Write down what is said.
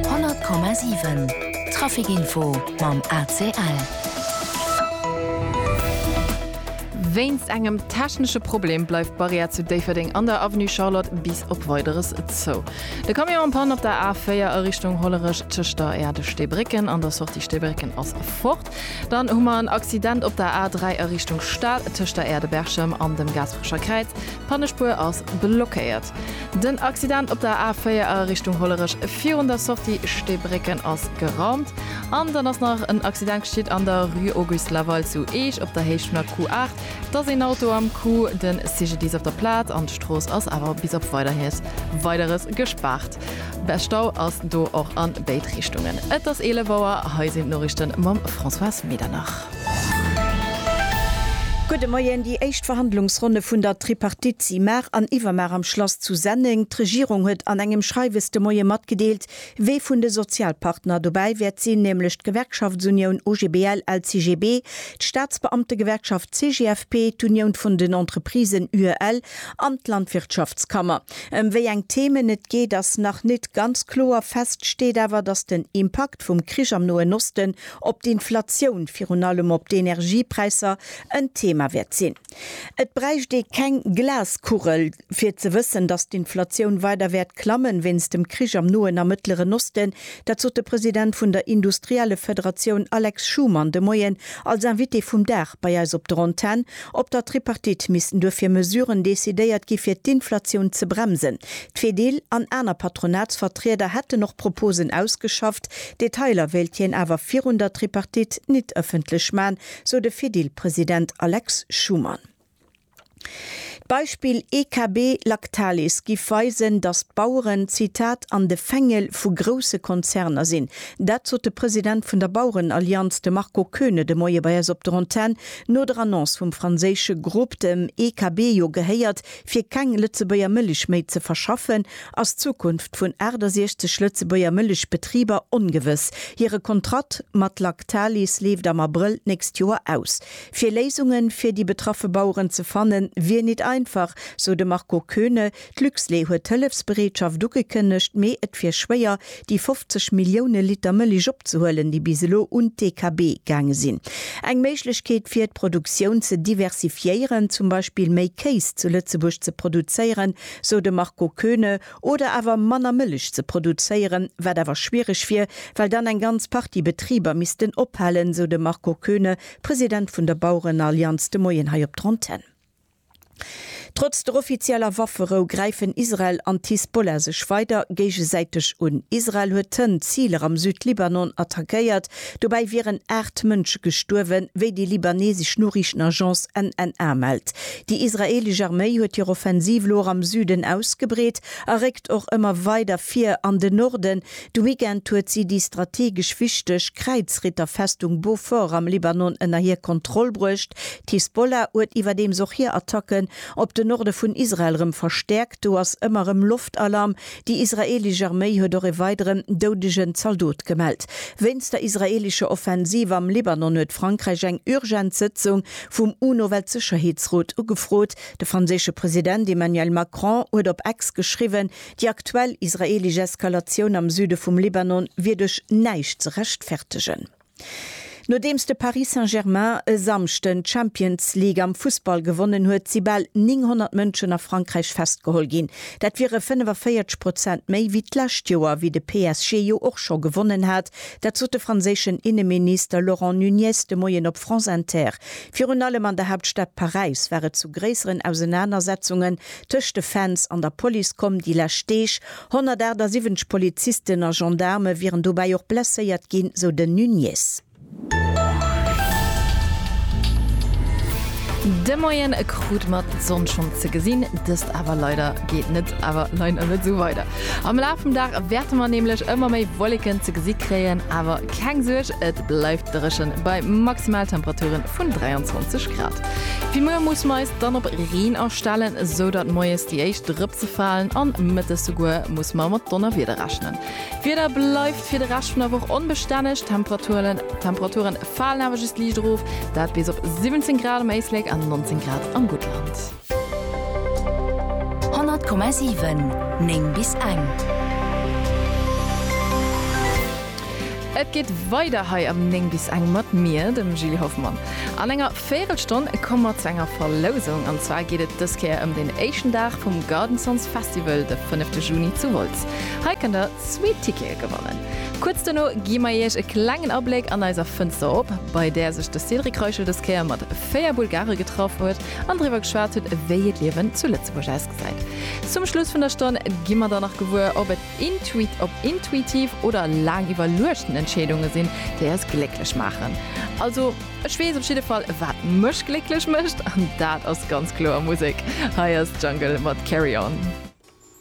100,7 Trafikinfo mam ACL. Wéinst engem technesche Problem bleift d'Barrière zu Déifferdeng an der Avenue Charlotte bis op Weideres zou. De Camion am Panne op der A4 a Richtung Hollerech tëscht der Erdestéibrécken an der Sortie Stéibrécken ass fort. Dann hu mer en Accident op der A3 a Richtung Stad tëscht der Aire de Berchem an dem Gaasperecher Kräiz. D'Pannespuer ass blockéiert. Den Accident op der A4 a Richtung Hollerech virun der Sortie Steebrécken ass geraumt. An dann ass nach en Accident geschitt an der Rue Auguste Laval zu Eech op der Héicht vun der Q8. Et ass een Auto am Coup. Den CGDIS op der Plaz an d'Strooss ass awer bis op Weiderhies Weideres gespaart. Bä Stau ass do och an béid Richtungen. Et ass 11 Auer, hei sinn d'Noriichten mam Françoise Medernach. Gudde Moien, Déi éischt Verhandlungsronne vun der Tripartite si mar an iwwermar am Schlass zu Senneng. D'Regierung huet an engem Schreiwes de Moie matgedeelt, wee vun de Sozialpartner dobäi wäert sinn, nämlech d'Gewerkschaftsunioun OGBL-LCGB, d'Staatsbeamtegewerkschaft CGFP, d'Union vun den Entreprisen UEL an d'Landwirtschaftskammer. Em wéi eng Themen et geet ass nach nit ganz kloer. Fest steet awer, dass den Impakt vum Krich am Noen Osten op d'Inflatioun, virun allem op d'Energiepräisser, en Thema wäert sinn. Et bräicht ee keng Glaskugel fir ze wëssen, dass d'Inflatioun weider wäert klammen wéinst dem Krich am Noen a Mëttleren Osten. Dat sot de President vun der Industriellefederatioun Alex Schumann de Moien als Invité vum Dag bei eis op der Antenn. Op der Tripartite missten duerfir Mesuren decidéiert gi fir d'Inflatioun ze bremsen. D'Fedil an aner Patronatsvertrieder hätten och Proposen ausgeschafft. Detailer wéilt hien awer virun der Tripartite nit ëffentlech man, sou de Fedil-President Alex Schumann. D'Beispill EKB Lactalis giff weisen, datt d'Baueren, Zitat, an de Fängel vu grousse Konzerner sinn. Dat sot de President vun der Bauerenallianz, de Marco Koeune de Moie bei eis op der Antenn. No der Annonce vum franséische Grupp, dem EKB jo gehéiert, fir keng Lëtzebuerger Mëlich méi ze verschaffen, ass d'Zukunft vun 68 Lëtzebuerger Mëlich-Betriber ongewëss. Hire Kontratt mat Lactalis leeft am Abrëll d'nächst Joer aus. Fir Léisungen fir déi betraffe Baueren ze fannen, wier nit einfach, sou de Marco Koeune, D'Luxlait huet Hëllefsbereetschaft ugekënnegt, mee et wier schwéier, déi 50 Millioune Liter Mëlich opzehuelen, déi bis elo un d'EKB gaange sinn. Eng Méiglechkeet wier, d'Produktioun ze diversifiéieren, zum Beispill méi Kéis zu Lëtzebuerg ze produzéieren, sou de Marco Koeune, oder awer manner Mëlich ze produzéieren, wat awer schwiereg wier, well dann eng ganz Partie Betriber missten ophalen, sou de Marco Koeune, President vun der Bauerenallianz de Moien hei op der Antenn. Trotz der offizieller Wafferou gräifen Israel an d'Hisbollah sech weider géigesäiteg un. Israel huet tënn Ziler am Süd-Libanon attackéiert. Dobäi wieren aacht Mënsche gestuerwen, wéi déi libanesesch Noriichtenagence NNA mellt. Déi israeelesch Arméi huet hir Offensiv elo och am Süden ausgebreet a réckt och ëmmer weider vir an den Norden, De Weekend huet si déi strategesch wichteg Kräizritterfestung Beaufort am Libanon ënner hir Kontroll bruecht. D'Hisbollah huet iwwerdeems och hir Attacken op de Norde vun Israel rëm verstäerkt. Do ass ëmmer erëm Loftalarm. Déi israeelesch Arméi huet och e weideren doudegen Zaldot gemellt. Wéinst der israeelescher Offensiv am Libanon huet Frankräich eng urgent Sëtzung vum UNO-Weltsécherheetsrot ugefrot. De franséische President Emmanuel Macron huet op X geschriwwen, Déi aktuell israeelesch Eskalatioun am Süde vum Libanon wier duerch näischt ze rechtfertegen. Nodeems de Paris Saint-Germain e Samschden d'Champions League am Fussball gewonnen huet, si bal 900 Mënschen a Frankräich festgeholl ginn. Dat wiere 45 Prozent méi wéi d'lescht Joer, wéi de PSG jo och scho gewonnen hat. Dat sot de franséischen Inneminister Laurent Nunez de Moien op France Inter. Virun allem an der Haaptstad Paräis war et zu gréisseren Ausenanersetzungen Tëscht de Fans an der Police komm déi lescht Deeg 178 Polizisten a Gendaarme wieren dobäi och blesséiert ginn, sou den Nuñez. De Moien krut mer d'Sonn schonn ze gesinn, dëst awer leider geet net awer leider net esou weider. Am Laf vum Dag wäerte mer nämlech ëmmer méi Wolleken ze gesi kréien, awer keng Suerg, et bleift dréchen bei Maximaltemperaturen vun 23 Grad. Fir muer musse mer eis dann op Reen astellen, esou datt moies déi éischt Drëpse falen an mëttes souguer musse mer mat Donnerwieder rechnen. D'Wieder bleift fir de Rescht vun der Woch onbestänneg, d'Temperature falen awer just liicht erof, dat bis op 17 Grad um Éislek an 19 Grad am Guttland. 100,7 9 bis eng. Et geet weider hei am 9 bis eng mat mir, dem Gilles Hoffmann. An enger Véirelstonn komme mer zu enger Verlousung. An zwar geet et dës Kéier ëm den éischten Dag vum Garden Sounds Festival, de fënnefte Juni zu Wolz. Hei kënnt der zwee Tickete gewannen. Kuerz dono gi mer Iech e klengen Abléck an eiser Fënster op, bei där sech de Cédric Reichel dës Kéier mat véier Bulgare getraff huet. an driwwer geschwat huet, wéi hiert Liewen zu Lëtzebuerg ausgesäit. Zum Schluss vun der Stonn gi mer dann nach gewuer, ob et intuit ob intuitiv oder laang iwwerluechten Entscheedunge sinn, déi eis glécklech maachen. Also ech weess op jidde Fall, wat mech glécklech mécht, an dat ass ganz kloer Musek. Hei ass Jungle mat Carry On.